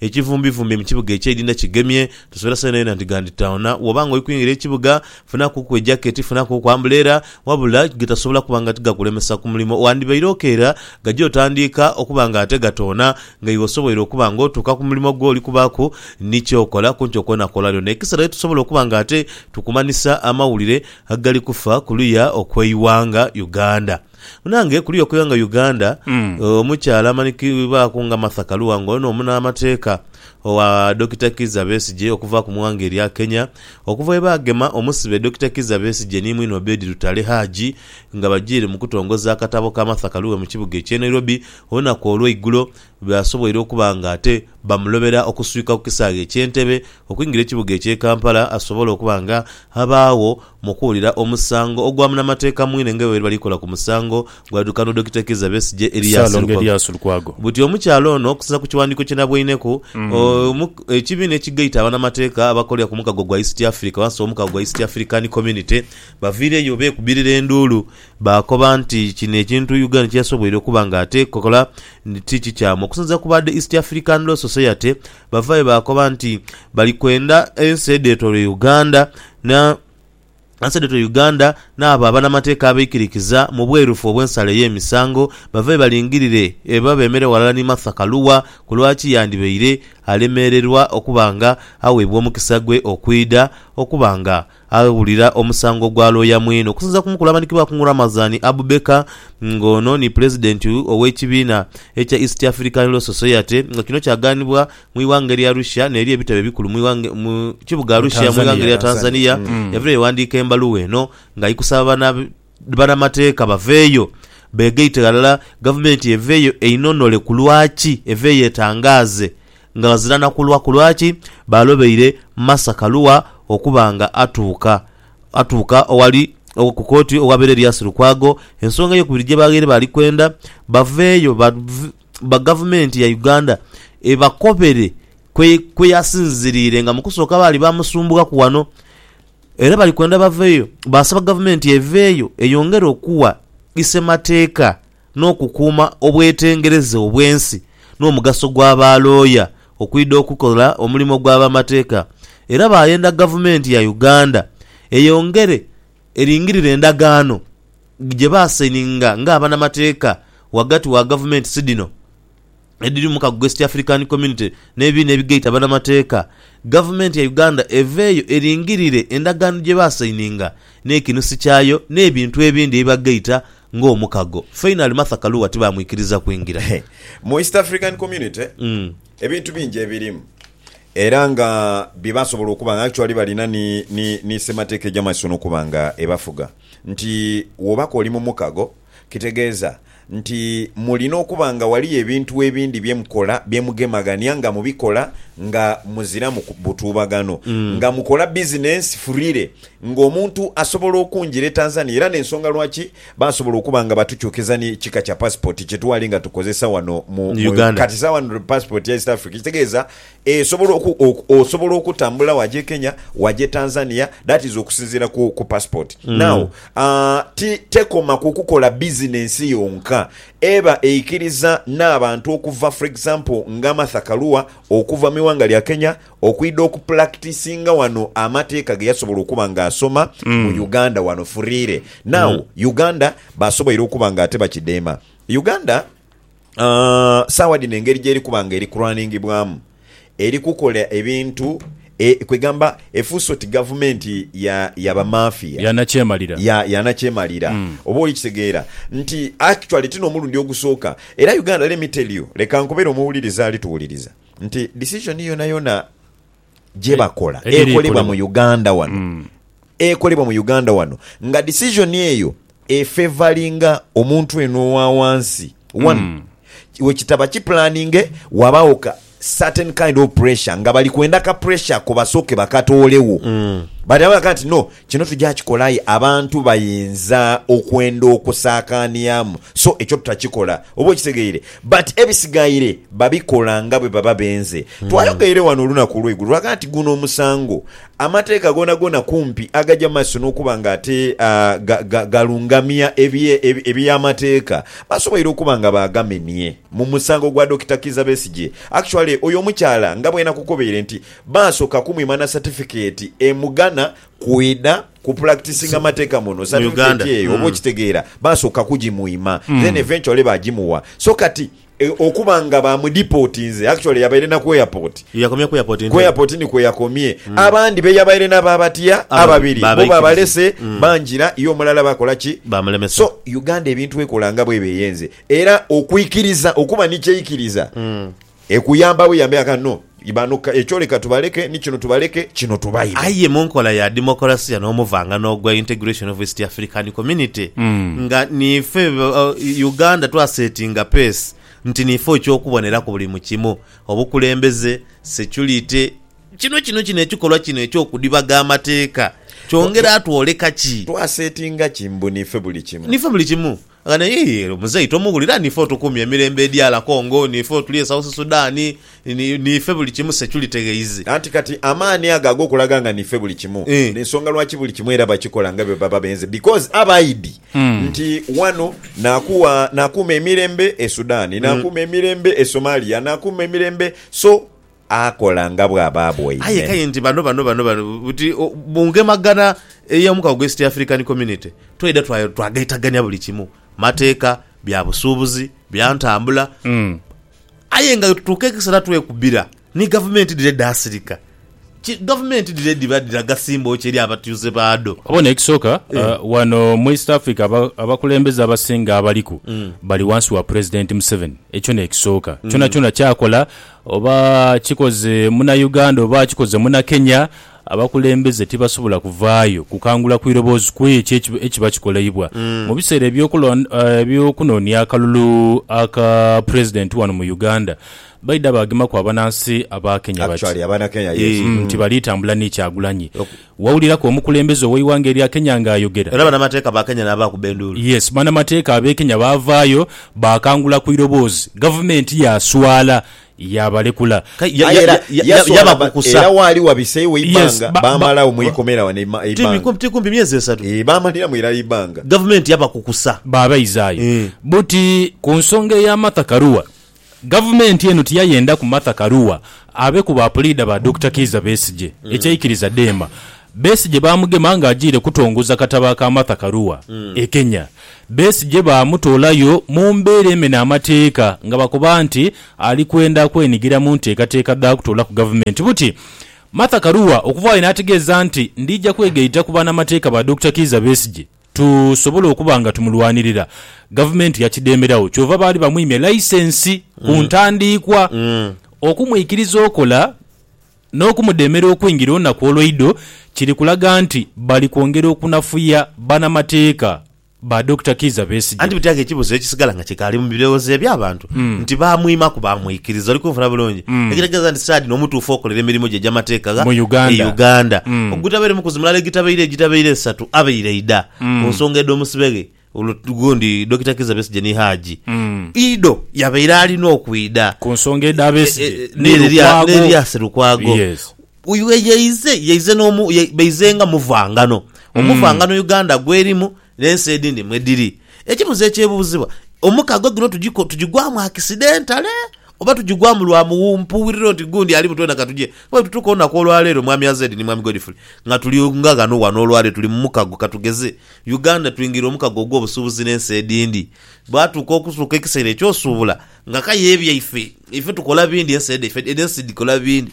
Ekivumbivumbi mu kibuga eky'eidinda kigemye, tosuubira saa yonayona nti ghanditaona. Bw'oba ng'oli kwingira ekibuga, funakuku ejaketi, funakuku ambuleera. Wabula gatasobola kuba nga tigakulemesa ku mulimo. Wandibaire okeera gaja otandiika okuba ng'ate gatoona, nga iwe osoboire okuba ng'otuuka ku mulimo gw'oli kubaaku ni ky'okola ku nkyo kwona kw'olaliona. Ekisera ye tusobola okuba ng'ate tukumanhisa amawulire agali kufa ku luya okw'eighanga Uganda. Munange kuliya okuyenga Uganda omukyala amanikibwaku nga Martha Karua nga ono munamateeka owa Dokita Kizza Besigye okuva ku mwanga erya Kenya okuva bwebagema omusibe Dokita Kizza Besigye ni mwine Obed Lutale Haji nga bajiire mukutongoza akatabo ka Martha Karue mu kibuga ekye Nairobi olunaku olweigulo Baasoboire okuba nga ate bamulobera okuswika ku kisaghe eky'e Ntebe okwingira ekibuga eky'e Kampala asobole okuba nga abaagho mu kuwulira omusango ogwa munamateeka mwine nga bwebaali balikola ku musango gwaidhukanhwa Dokita Kizza Besigye Erias Lukwago. Buti omukyala ono okusinza ku kiwandiiko kye nabweineku, ekibiina ekigaita abanamateeka abakolera ku mukago gwa East Africa wansi w'omukago gwa East African Community baviireyo beekubirira enduulu Baakoba nti kino ekintu Uganda kye yasoboire okuba nga atekola nti ti kikyamu. Okusinziira ku ba The East African Law Society, bavaayo baakoba nti bali kwenda ensi edheetooloire Uganda na ensi edheetooloire Uganda n'abo abanamateeka abeikirikiza mu bwerufu obw'ensala ey'emisango bavayo balingirire oba beemere ghalala ni Martha Karua ku lwaki yandibaire alemererwa okuba nga aweebwa omukisa gwe okwidha okuba nga Aghulira omusango gwa looya mwine okusinziira ku mukulu amanhikibwa Akungu Ramazani Abubeker nga ono ni pulezidenti ow'ekibiina ekya East African Law Society nga kino kyagaanibwa mu ighanga erya Russia n'eri ebitebe ebikulu mu kibuga Arusha mu ighanga erya Tanzania yaviirayo yaghandiika embaluwa eno nga ayi kusaba bana Banamateeka baveeyo beegaite ghalala, gavumenti eveeyo einonole ku lwaki eveeyo etangaaze nga ghazira na kulwa ku lwaki baalobeire Martha Karua okuba nga atuuka atuuka owali ku kooti owabeera Erias Lukwago ensonga eyokubiri gye baghaire baali kwenda baveeyo ba gavumenti ya Uganda ebakobere kwe yasinziriire nga mu kusooka baali baamusumbuwaku wano. Era bali kwenda baveeyo baasaba gavumenti eveeyo eyongere okuwa isemateeka n'okukuuma obwetengereze obw'ensi n'omugaso gwa ba looya okwidha okukola omulimo gwa bamateeka era baayenda gavumenti ya Uganda eyongere eringirire endagaano gye baasaininga ng'abanamateeka ghagati wa gavumenti sidhino edhiri mu mukago gwa East African Community n'ebibiina ebigaita banamateeka, gavumenti ya Uganda eveeyo eringirire endagaano gye baasayininga n'ekinusi kyayo n'ebintu ebindi ebibagaita ng'omukago. Fainali Martha Karua tibaamwikiriza kwingira. Mu East African Community ebintu bingi ebirimu era nga bye basobola okuba nga actually balina ni ni ni ssemateeka egy'amaiso n'okuba nga ebafuga nti woobaka oli mu mukago, Kitegeeza nti mulina okuba nga ghaliyo ebintu ebindi bye mukola bye mugemaghania nga mubikola nga muziramu butuubagano, nga mukola bizinensi furire ng'omuntu asobola okungira e Tanzania era n'ensonga lwaki baasobola okuba nga batukyukiza ni kika kya pasipooti kye twali nga tukozesa wano mu Uganda. Kati sawa passport ya East Africa ekitegeeza Esobola oku oku osobola okutambula waje Kenya waje Tanzania that is okusinzira ku ku passport now aah ti tekoma kukukola business yonka eba eikiriza nabantu okuva for example nga Martha Karua okuva miwanga lya Kenya okwida okuplactisinga wano amateka geyasobola okuba nga asoma mu Uganda wano freely now Uganda basoboire okuba nga ate bakidema Uganda Sawa dhino engeri gyeri kuba nga eri kuruningibwamu eri kukola ebintu kwegamba efuuse oti gavumenti ya bamafia, yanakyemalira oba olikitegeera nti actually ti nomulundi ogusooka era Uganda let me tell you leka nkubere omuwuliriza alituwuliriza nti decision yonayona. gye bakola ekolebwa mu Uganda wano mm. ekolebwa mu Uganda wano nga decision eyo efevalinga omuntu eno owa wansi one mm. wekitaba kipulaninge wabaawo ka certain kind of pressure nga bali kwenda ka pressure ko basooke bakatoolewo mm. bati nti no Kino tuja kikola aye abantu bayinza okwenda okusaakaaniamu so ekyo tutakikola. Oba okitegeire? But ebisigaire babikola nga bwe baba benze. Twayogeire wano olunaku olweigulo lwaga nti guno omusango amateeka goonagoona kumpi agaja mu maiso n'okuba nga ate ga, ga, galungamia ebye, eby'amateeka basoboire okuba nga baagamenie mu musango gwa Dokita Kiiza Besigye. Actually oyo omukyala nga bwenakukobeire nti Baasooka kumwima na satifikeeti emugana kwidha kupractisinga mateeka muno. Satifikeeti eyo oba okitegeera, baasooka kugimwima then eventually baagimuwa. So kati okuba nga baamudipotinze, actually yabaire na ku airport. Yakomye ku airport Ku Ntebe. airport ni kweyakomye. Abandi be yabaire nabo abatya Ababiri, ababiri, bo baabaikiriza. baabalese bangira ye omulala baakola ki? Baamulemesa. So Uganda ebintu ekola nga bw'eba eyenze. Era okwikiriza, okuba ni ky'eikiriza Ekuyamba we yambe agha no. Bano ekyo leka tubaleke ni kino tubaleke kino tubaime. Aye mu nkola ya demokolasiya n'omuvangano ogwa integration of East African Community, nga niife Uganda twasetinga peesi nti niife oky'okuboneraku buli mu kimu, obukulembeze, securite, kino kino kino ekikolwa kino eky'okudhibaga amateeka kyongera twoleka ki? Twasetinga ki mbu niife buli kimu? Niife buli kimu. Ghano yii muzei tomuwulira nife otukumye emirembe edr congo nife otuli e south sudan nife buli kimu security ghaizi. Anti kati amaani ago agokulaga nga nife buli kimu nensonga lwaki buli kimu era bakikola nga bwebaba benze because abaidi nti wano nakuwa nakuuma emirembe e sudan nakuuma emirembe e somalia nakuuma emirembe so akola nga bw'aba aboine. Aye k'aye nti bano bano bano bano buti mu ngemagana ey'omukago gw'East African Community twaidha twagaitagania buli kimu, mateeka, bya busuubuzi, bya ntambula aye nga wetutuuka ekiseera twekubira ni gavumenti dhire edhasirika. Ki gavumenti dhire edhiba dhiraga simboo ki eri abatuuze baadho? Obona ekisooka, wano mu East Africa abakulembeze abasinga abaliku bali wansi wa Pulezidenti Museveni. Ekyo n'ekisooka. Kyonakyona ky'akola Oba kikoze Munayuganda oba kikoze Munakenya, abakulembeze tibasobola kuvaayo kukangula ku iroboozi ku ekyo ekiba kikoleibwa. Mu biseera eby'okunoonia akalulu aka Pulezidenti wano mu Uganda, baidha baagemaku abanansi Abaakenya bati nti bali tambula ni Kyagulanyi. Wawuliraku omukulembeze oweighanga erya Kenya nga ayogera. Era banamateeka ba Kenya nabaakuba enduulu. Yes banamateeka abe Kenya baavaayo baakangula ku iroboozi gavumenti yaaswala yaabalekula. Aye era yaswala era waali wabiseewo eibbanga baamalagho mu ikomera wano eibbanga. Ti kumpi myezi esatu. Eeh baamaliramu irala eibbanga. Gavumenti yabakukusa. Baabaizaayo. Buti ku nsonga eya Martha Karua Gavumenti eno tiyayendaku Martha Karua abe ku ba puliida ba Dokita Kiiza Besigye ekyaikiriza dheema. Besigye baamugema ng'ajiire kutongoza katabo aka Martha Karua e Kenya. Besigye baamutoolayo mu mbeera emena amateeka nga bakoba nti ali kwenda kwenigira mu nteekateeka dha kutoolaku gavumenti buti. Martha Karua okuvaayo n'ategeeza nti, Ndiija kwegaita ku banamateeka ba Dokita Kiiza Besigye. tusobole okuba nga tumulwanirira, Gavumenti yakidhemeragho kyova baali bamwimye laisensi ku ntandiikwa okumwikiriza okola n'okumudheemera okwingira olunaku olweidho kiri kulaga nti bali kwongera okunafuya banamateeka ba Dokita Kiiza Besigye. Anti biteega ekibuzo ekisigala nga kikaali mu birowoozo eby'abantu nti baamwimaku baamwikiriza? Oli kunfuna bulungi? Ekitegeeza nti saadi n'omutuufu okolera emirimu gye egy'amateeka gha Uganda ogutabaire mukuzi mulala egitabaire egitabaire esatu. abaire aidha ku nsonga edh'omusibe ghe gundi Dokita Kizza Besigye ni Haji Ido yabaire alina okwidha Ku nsonga edha Besigye e- e- ni n'eri lya- Lukwago. n'eri lya Sserukwago. Yes. Uyu ye- yaize yaize n'omu ye- baize nga muvangano omuvangano Uganda gwerimu n'ensi edhindi mwedhiri. Ekibuzo ekyebuuzibwa, omukago gino tugiko- tugigwamu akisidentale Oba tugigwamu lwa mpuwulira oti gundi ali butwena ka tugye. Bwe tutuuka olunaku olwa leero, Mwami Azed ni Mwami Godfrey, nga tuli nga ghano wano olwa leero, tuli mu mukago, ka tugeze, Uganda, twingire omukago ogw'obusuubuzi n'ensi edindi. Bwatuuka okutuuka ekiseera eky'osuubula, nga k'aye ebyaife, ife tukola bindi, ensi dhaife, edh'ensi dhikola bindi.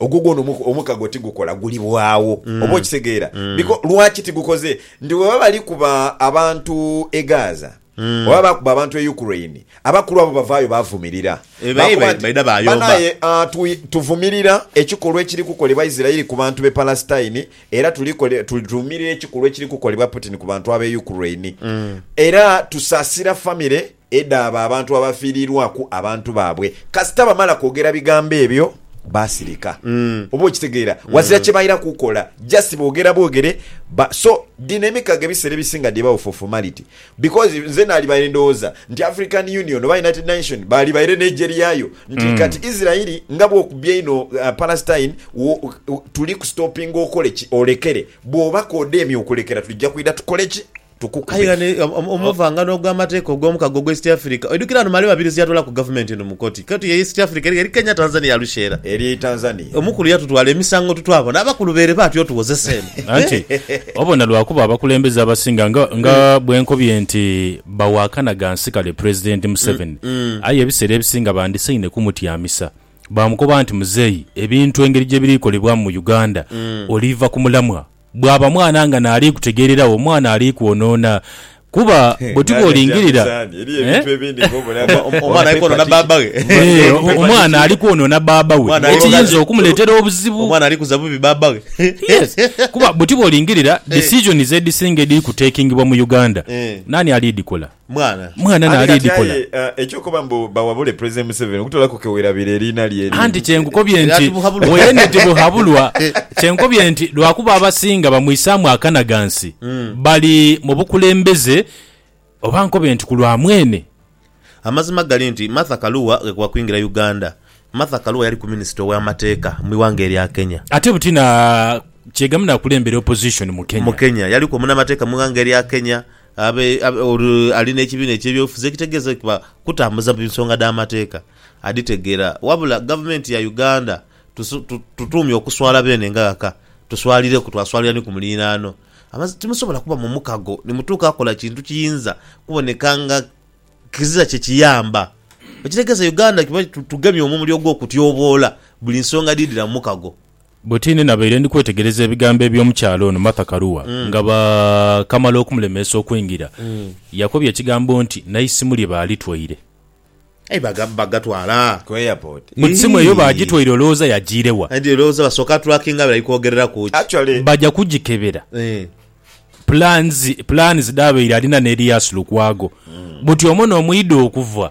Ogwo gwona omukago tigukola, guliwaagho. Oba okitegeera? Biko, lwaki tigukoze? Nti bwe baba bali kuba abantu e Gaza, bwe baba bakuba abantu e Ukraine, abakulu abo bavaayo bavumirira. Eh, baye Baakoba nti, baidha baayomba. Banaaye, ah, tu, tuvumirira ekikolwa ekiri kukolebwa Isiraeli ku bantu b'e Palesitine, era tuli kole, tu, tuvumirira ekikolwa ekiri kukolebwa Putin ku bantu ab'e Ukraine. Era tusaasira famire Edha abo abantu abafiirirwaku abantu baabwe kasita bamala kwogera bigambo ebyo baasirika. Oba okitegeera? Wazira kye baira kukola, just boogera bwogere ba. So, dhino emikago ebiseera ebisinga dhiba for formality. Because nze naalibaire ndowooza nti African Union oba United Nation baalibaire n'eigye lyayo nti kati Israel nga bw'okubye einho Palestine wo, tuli kustopinga okoleki? Olekere. Bw'oba k'odheemye okulekera tuja kwidha tukole ki? Tukukaire ni omuvangano ogw'amateeka ogw'omukago ogwa East Africa. Oidhukire ano Male Mabirizi yatwalaku Gavumenti eno mu koti. Koti ye East Africa eri eri Kenya, Tanzania, Arusha era. Eri e Tanzania. Omukulu yatutwala emisango tutwabona abakulu bere baati otuwozesa eno. Anti obona lwakuba abakulembeze abasinga nga nga bwenkobye nti bawakana gansi kale Pulezidenti Museveni aye ebiseera ebisinga bandisaine kumutyamisa bamukoba nti Muzeeyi ebintu engeri gyebirikolebwamu mu Uganda oliiva ku mulamwa. Bwaba mwana nga n'aliikutegeereragho, mwana aliikwonoona. Kuba bwe tuba olingirira, omwana alikwonoona bbaabba we, ekiyinza okumuleetera obuzibu. Yes. Kuba bwe tuba olingirira, decisions edhisinga edhiri kutakingibwa mu Uganda, naani aliidhikola? Mwana. Mwana Aye nali kati dikola. aye eh, ekyokuba mbu bawabule President Museveni okutoolaku kewerabira eriina lye erindi. Anti kyenkukobye Era nti tibuhabulwa. weene tibuhabulwa kyenkobye nti lwakuba abasinga bamwisaamu akanagansi bali mu bukulembeze oba nkobe nti ku lwa mwene. Amazima gali nti Martha Karua ghekuba kwingira Uganda, Martha Karua yaliku Minisita ow'amateeka mu ighanga erya Kenya. Ate buti na kyegamu nakulembera opposition mu Kenya. Mu Kenya yaliku omunamateeka mu ighanga erya Kenya, Abe, abe, oli, ali n'ekibiina eky'ebyobufuzi ekitegeeza ekiba kutambuza mu nsonga dh'amateeka, adhitegeera. Wabula Gavumenti ya Uganda, tusu, tu, tutuumye okuswala beene nga ghaka, tuswalireku, twaswalira ni ku muliraano. Amaz, timusobola kuba mu mukago ni mutuuka kukola kintu kiyinza kuboneka nga kizira kye kiyamba. Ekitegeeza Uganda kiba, tu, tugemye omumuli ogw'okutyoboola buli nsonga edhiidhira mu mukago. Buti ni nabaire ndi kwetegereza ebigambo eby'omukyala ono Martha Karua nga baakamala okumulemeesa okwingira, yakobye ekigambo nti n'eisimu lye baalitwaire. Aye baga, bagatwala. Ku airport. Ku simu eyo baagitwaire olowooza yagiire wa? Aye ndhirowooza basooka trackinga biri kwogereraku ki. Actually. Baja kugikebera. Eeh. Plans, plans dhabaire alina n'edhia Lukwago. Buti omwo n'omwidha okuva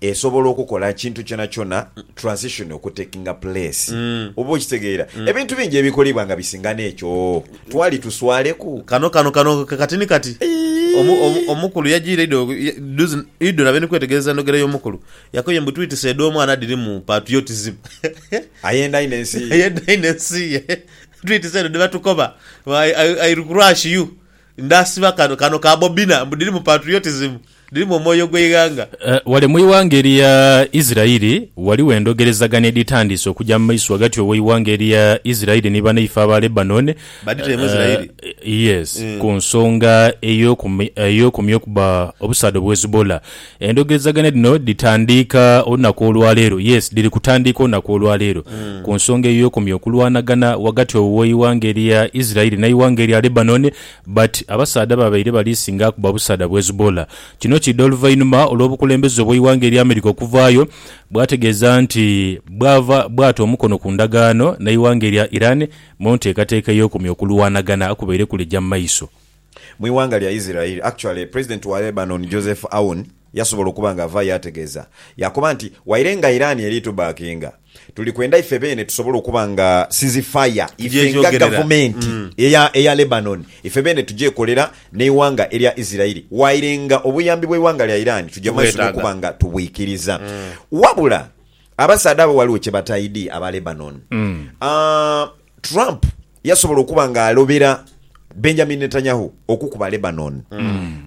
Esobola okukola ekintu kyonakyona transition okutakinga place. Oba okitegeera. Ebintu bingi ebikolebwa nga bisinga n'ekyo. Twali tuswaleku. Kano, kano, kano kati ni kati. Omu, omu, omukulu yajiire idho, duzi idho nabe ni kwetegereza endhogera y'omukulu. Yakoye mbu, Twitise edh'omwana dhirimu part yo kizibu. Ayenda inho ensi ye. Ayenda inho ensi ye. Twitise edho dhe batukoba, I, I, I'll crush you. Ndhasiba kano kano ka bobina mbu dhirimu patriotism, dhirimu omwoyo gw'eighanga. Ghale mu ighanga erya Isiraeli ghaligho endhogerezagana edhitandiise okuja mu maiso ghagati ow'eighanga erya Isiraeli ni banaife aba Lebanon, Badhitaire mu Isiraeli? yes, ku nsonga ey'okumya okuba obusaadha obwa Hezbollah. Endhogerezaganya dhino dhitandiika olunaku olwa leero, yes, dhiri kutandiika olunaku olwa leero, ku nsonga eyo eyokumya okulwanagana ghagati owo w'eighanga erya Israeli n'eighanga erya Lebanon, but abasaadha babaire bali singa kuba busaadha bu Hezbollah. Kino kiidha oluvainhuma olw'obukulembeze obw'eighanga erya America okuvaayo bwategeeza nti bwava bwata omukono ku ndagaano n'eighanga erya Iran mu nteekateeka eyokumya okulwanagana okubaire kulija mu maiso. Mu ighanga lya Isiraeli, actually president wa Lebanon Joseph Aoun yasobola okuba nga avaayo yaategeeza, yaakoba nti, Waire nga Iran eri tubackinga, tuli kwenda ife beene tusobole okuba nga ceasefire ife nga gavumenti eya eya Lebanon ife beene tugyekolera n'eighanga erya Isiraeli waire nga obuyambi bw'eighanga lya Iran tuja maiso n'okuba nga tubwikiriza. Wabula abasaadha abo ghaligho kye bataidhi aba Lebanon. Trump yasobola okuba nga alobera Benjamin Netanyahu okukuba Lebanon.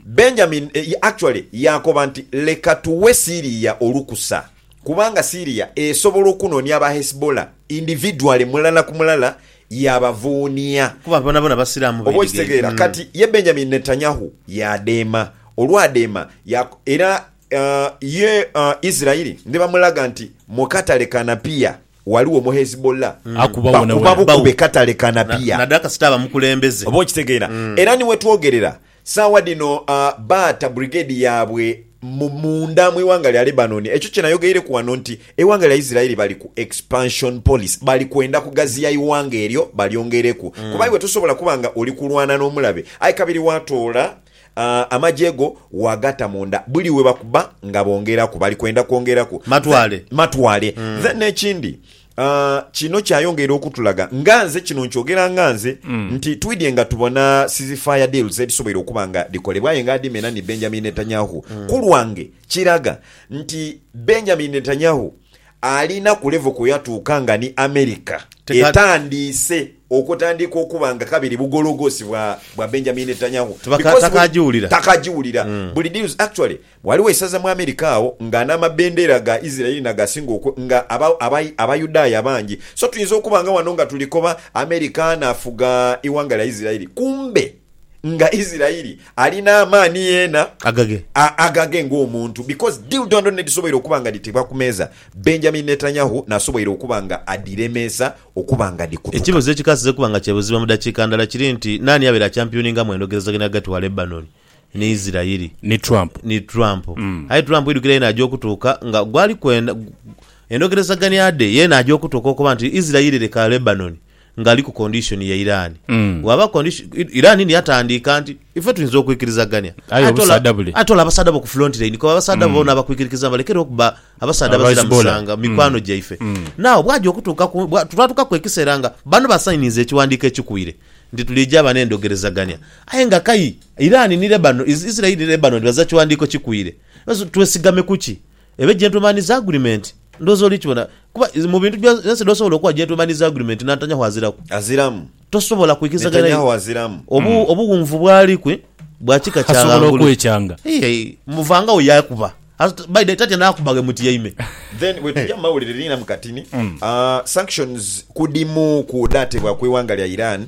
Benjamin eh, ya- actually yakoba nti leka tuwe Syria olukusa kubanga Syria esobola okunonia aba Hezbollah individually mulala ku mulala yabavuunia. Kuba bonabona basiraamu Oba beedigenge. okitegeera kati ye Benjamin Netanyahu yadeema olwadeema ya- era uh, ye uh, Israeli nibamulaga nti mukatale kanapiya Ghaligho mu Hezbollah. Akuba wona Bakuba wona. Bawo. bukube katale ka Na- Napier. Nada kasita aba mukulembeze. Oba okitegeera. Era ni wetwogerera, saawa dhino ah, baata brigade yaabwe mu munda mu ighanga lya Lebanon. Ekyo kye nayogeeireku wano nti eighanga lya Israeli bali ku expansion policy. Bali kwenda kugaziya ighanga eryo balyongereku. Kuba iwe tosobola kuba nga oli kulwana n'omulabe aye kabiri waatoola Amagye go waagata mu nda. Buli we bakuba nga bongeraku, bali kwenda kwongeraku. Matwale. Matwale. Then n'ekindi, kino kyayongera okutulaga, nga nze kino nkyogera nga nze, nti twidhye nga tubona ceasefire deals edhisoboire okuba nga dhikolebwa aye nga adhimena ni Benjamin Netanyahu. Ku lwange kiraga nti Benjamin Netanyahu Alina ku levo kwe yatuuka nga ni America Teka- etandiise okutandiika okuba nga kabiri bugologoosi bwa bwa Benjamin Netanyahu Tibaka- because buli- takagiwulira. takagiwulira Mm. buli deals actually waliwo eisaza mu America agho nga n'amabendera ga Israeli nagasinga oku nga aba aba abayudaaya abangi so tuyinza okuba nga wano nga tulikoba America anafuga eighanga lya Israeli kumbe nga Isiraeli alina amaani yena Agage. a, agage ng'omuntu, because deal dhondo nedhisoboire okuba nga dhitebwa ku meeza, Benjamin Netanyahu nasoboire okuba nga adhiremeesa okuba nga dhikutuka. Ekibuzo ekikasiza okuba nga kyebuzibwa mu dakiika ndala kiri nti naani abeera akyampioningamu endogerezaganya ghagati wa Lebanon ni Isiraeli? Ni Trump. Ni Trump. Aye Trump idhukira yena aja okutuuka nga gwali kwenda endogerezaganya dhe yena aja okutuuka okuba nti Isiraeli leka Lebanon ngali ku condition ya Iran bwaba condition Iran niyo atandiika nti ife tuyinza okwikirizagania Aye ate ola obusaadha bule. ate ola abasaadha bo ku front line kuba abasaadha bona abakwikirikiza balekere okuba abasaadha Aba abazira Hezbollah. musanga mikwano gyaife now bwaja okutuuka ku bwa- twatuukaku ekiseera nga bano basayininze ekiwandiiko ekikuire nti tulija aba n'endogerezagania aye nga kai Iran ni Lebanon Is- Israel ni Lebanon baza kiwandiiko kikuire twesigame kuki Ebe gentleman is agreement ndhooza oli kibona kuba mu bintu byonse dh'osobola okuwa gentleman is agreement Nantanyahu aziraku. Aziramu. Tosobola kwikirizaganya naye obu, obuwunvu bw'ali kwi bwa kika kya ghangulu. Asobola okwekyanga. Hii, muvangagho yakuba. By the tatya n'akuba ghe mutyaime. Then bwe tuja mu mawulire liina mu katini, Sanctions ku dhimu ku dhaatebwa ku ighanga lya Iran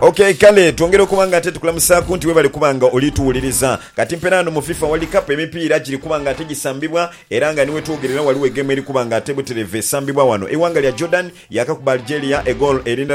Ok kale twongere okuba nga ate tukulamusaaku nti webale kuba nga oli tuwuliriza. Kati mpera ghano mu FIFA World Cup emipiira giri kuba nga ate gisambibwa era nga ni wetwogerera waliwo egeemu eri kuba nga ate butereevu esambibwa wano. Eighanga lya Jordan yakakuba Algeria egoolo eri ndala.